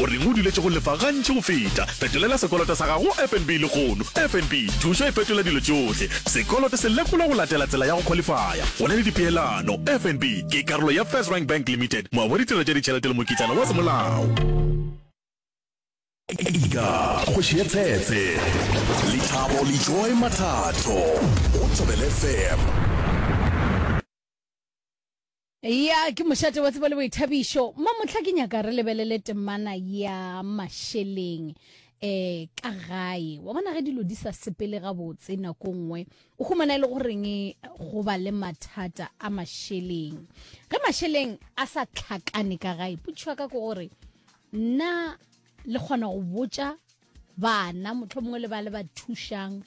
O reng o duletše go lefa gantši go feta? Fetolela sekoloto sa gago go FNB lehono. FNB, thušo e fetola dilo tšohle. Sekoloto se lekolwa go latela tsela ya go khwalifaya. Go na le dipeelano. FNB ke karolo ya FirstRand Bank Limited, moabi wa ditirelo tša ditšhelete le mokitlana wa semolao. Ika, kgoši ya tshetse. Lethabo le Joy Mathatho go Thobela FM. Ya, ke mošate wa tsebo le boithabišo. Ma mohla ke nyaka re lebelele temana ya mašeleng eh ka gae wa bona ge dilo di sa sepele gabotse nako nngwe o humana e le goreng go ba le mathata a mašeleng ge mašeleng a sa tlhakane ka gae putšhwa ka ke gore nna le kgona go botša Bana, motlho mongwe le ba le ba thušang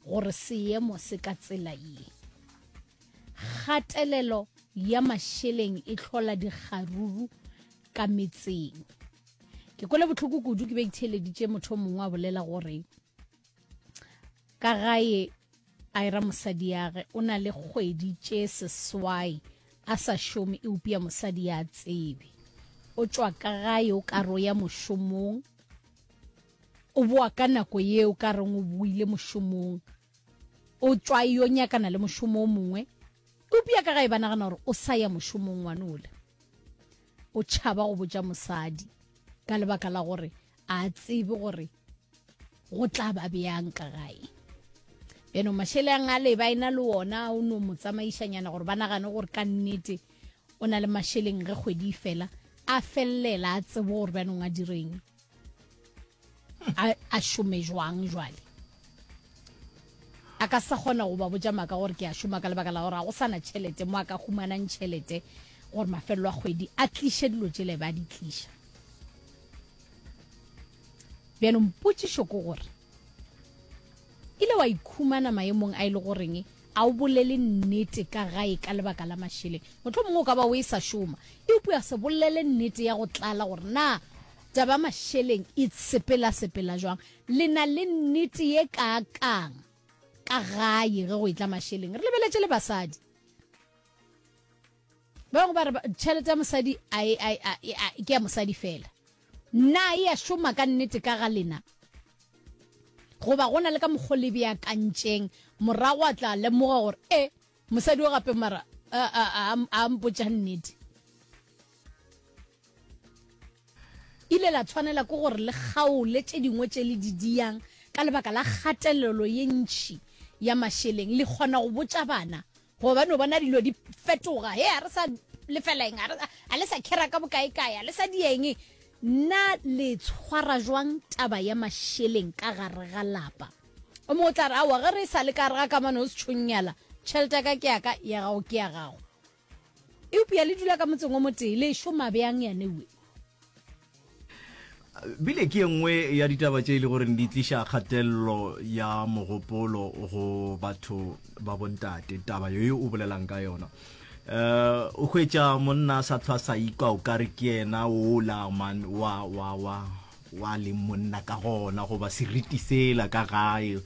gore seemo se ka tsela ye. Kgatelelo ya mašeleng e tlhola dikgaruru ka metseng. Ke kwele botlhoko kudu ke be ke theeleditše motho mongwe a bolela gore ka gae a era mosadi yage o na le kgwedi tše seswai a sa šome eupša mosadi ya tsebe o tšwa ka gae o karo ya mošomong o boa ka nako yeo ka reng o boile mošomong o tšwa yo nyakana le mošomo o mongwe eupša ka ga e ba nagana gore o sa ya mošomong ngwane ole o tšhaba go botša mosadi ka lebaka la gore a tsebe gore go tla ba bjang ka gae bjano mašele a ngale ba ena le ona o no mo tsamaišanyana gore ba nagane gore ka nnete o na le mašeleng ge kgwedi e fela a felelela a tsebo gore bjanong a direng a šome jwang jwale a ka sa kgona go ba botja maka gore ke a šoma ka lebaka la gore ga go sana tšhelete mo a ka humanang tšhelete gore mafelelo a kgwedi a tliše dilo tšele ba di tliša bjanong potsišo ke gore ile wa ikhumana maemong a e le goreng A o bolele nnete ka gae ka lebaka la mašeleng. Mohlomongwe o ka ba o e sa šoma. Eupša se bolele nnete ya go tlala gore na taba ya mašeleng e sepelasepela bjang. Le na le nnete ye kaakang ka gae ge go e tla mašeleng? Re lebeletše le basadi. ba bangwe ba re tšhelete ya mosadi ke ya mosadi fela na e ya šoma ka nnete ka ga lena goba go na le ka mokgo le beakantšeng morago a tla lemoga gore e mosadi o gape mara a mpotša nnete ile la tshwanela ke gore le kgaole tše dingwe tše le di diyang ka lebaka la kgatelelo ye ntšhi ya mašeleng le kgona go botša bana gobane o bona dilo di fetoga he a re sa lefela eng a le sa khera ka bokaekae a le sa dieng nna le tshwara jwang taba ya masheleng ka gare ga lapa o mongwe o tla re aowa ge re sa le ka gare ga kamano o setšhonnyala tšhelete ya ka ke yaka ya gago ke ya gago eupša le dula ka motseng o motee le šoma bjang yanewe bile ke ye nngwe ya ditaba tše e le goreng di tliša kgatelelo ya mogopolo go batho ba bontate taba yo o bolelang ka yona uh o hwetša monna sa tlhwa sa ikwa o kare ke yena o la man wa wa wa wa le monna ka gona goba seriti sela ka gae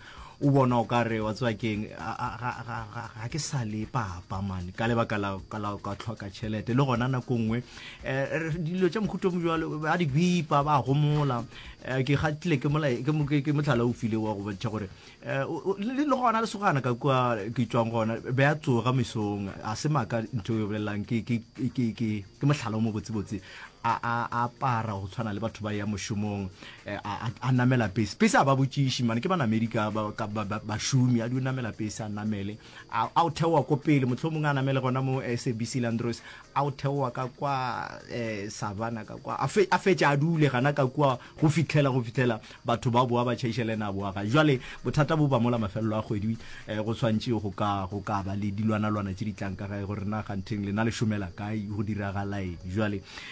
o bona o ka re wa tseba keng ga ke sa le papa mane ka lebaka la ka tlhoka tšhelete le gona nako nngwe um dilo tša mohuto mo jalo ba di bipa ba gomola um ke gatile ke motlhala o file wa go bontšha gore um le gona le sogana ka kua ke tswang gona be a tsoga mesong a se maka ntho e bolelelang ke motlhala o mo botsebotse a apara go tshwana le batho ba ya mošomong Eh, a namela pese pese a ba botšiši mane ke banamedi ka bašomi a di o namela pese a namele a o theoa ko pele motlho mongwe a namele gona mo eh, sabc landros a o theoa ka kwa eh, savana ka kwa a fetša a dule gana ka kua go fitlhela go fitlhela batho ba boa ba tšhaiša le ene a boaga jale bothata bo ba mola mafelelo a kgwedi go swantše go ka go ka ba le dilwanalwana tše di tlang ka gae gore na ganteng lena le šomela kae go diragalaeng jale